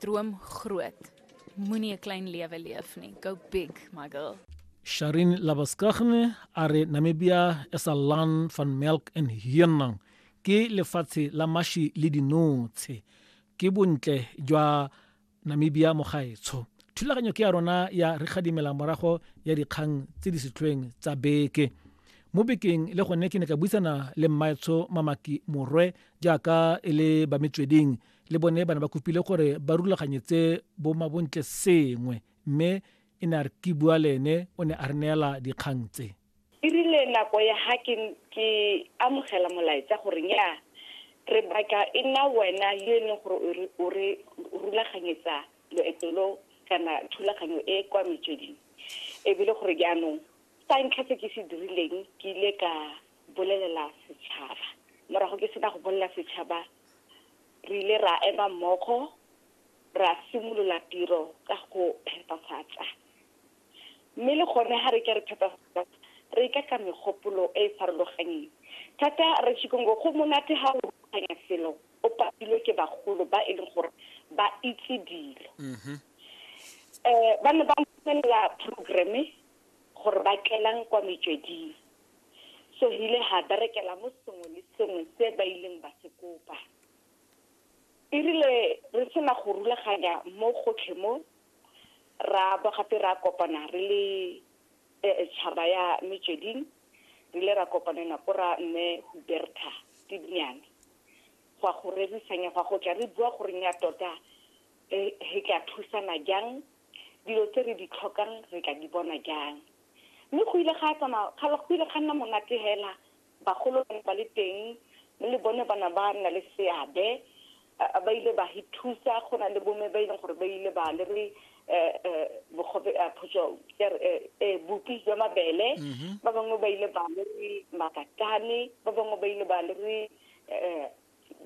Droom groot. Moenie 'n klein lewe leef nie. Go big, my girl. Sharin Labaskagne are Namibia is a land van milk and hyenang. Ke lefatshe la mashi le dinotshe. Ke bontle jwa Namibia mo gaetsho. Thulaganyo ke ya rona ya re gadimela morago ya dikgang tse di setlhweng tsa beke. mo bekeng le gone ke ne ka buisana le mmaetsho mamaki morwe jaaka e le ba metsweding le bone bana ba kopile gore ba rulaganyetse bo mabontle sengwe mme e ne a re ke bua le ene o ne a re neela dikgang tse e rile nako ya ga ke ke amogela molaetsa gore nya re batla e nna wena yo e leng gore o re rulaganyetsa loeto lo kana thulaganyo e kwa metsweding ebile gore jaanong sa ntlha se ke se dirileng ke ile ka bolelela setšhaba morago ke sena go bolelela setšhaba re ile ra ema mmogo ra simolola tiro ka go phepafatsa mme le gone ga re ke re phepafatsa re ka ka megopolo e e farologanyeng thata re chikongo go monate ga o rulaganya selo o patilwe ke bagolo ba e leng gore ba itse dilo um mm-hmm. eh, ba ne ba ntshelela programme gore ba tlelang kwa metsweding so re ile ga berekela mo sengwe le sengwe se ba ileng ba se kopa e rile re sena go rulaganya mo gotlhe mo ra bo gape ra kopana re le eh, tšhaba ya metsweding re ile ra kopanela ko ra mme huberta tedinyane gwa go rerisanya gwa go tla re bua goreng ya tota re tla thusana jang Dilo tse re di tlhokang re tla di bona jang? Mme go ile ga tsamaya, go ile ga nna monate hela. Bagolo ba ne ba le teng, mme le bone ba ne ba nna le seabe. Ba ile ba re thusa, go na le bomme ba e leng gore ba ile ba le re bupi jwa mabele, ba bangwe ba ile ba le re makatane, ba bangwe ba ile ba le re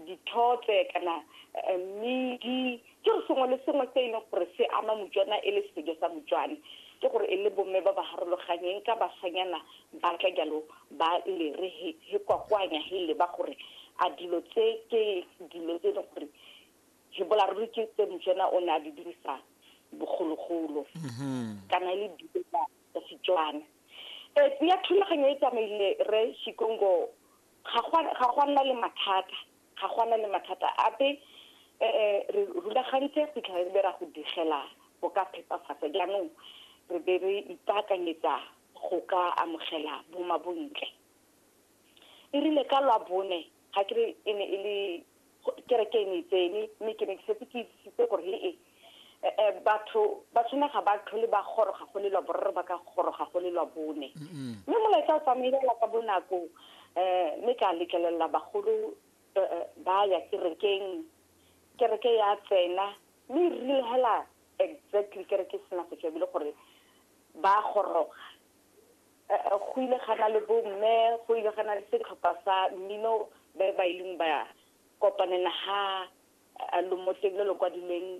dithotse kana eh, mmidi ke re sengwe le sengwe se e leng gore se ama motswana e le sejo sa motswane ke gore e le bomme ba ba harologanyeng ka basanyana ba tla jalo ba lere he he kwakwanya he leba gore a dilo tse ke dilo tse e leng gore he bolaruri ke tse motswana o ne a di dirisa bogologolo mhm. kana e le dilo tsa setswana um ya thulaganyo e tsamaile re shikongo ga go a nna le mathata ga go a nna le mathata ape um re rulagantse go fitlhela re be ra go digela go ka phepafatsa jaanong re be re ipaakanyetsa go ka amogela bomabontle e rile ka lwa bone ga ke re e ne e le Kereke e ne e tsene, mme ke ne ke setse ke itsisitse gore le e batho ba tshwana ga ba tlhole ba goroga go le lwa boraro ba ka goroga go le lwa bone mme molaetsa o tsamaelela ka bonako um mme ka letlelelela bagolo ba ya kerekeng kereke ya tsena mme e rile hela exactly kereke e sena go tswa ebile gore ba goroga go ile ga na le bomme go ile ga na le setlhopha sa mmino ba ba ileng ba kopanela ha lomotleng le lo kwadilweng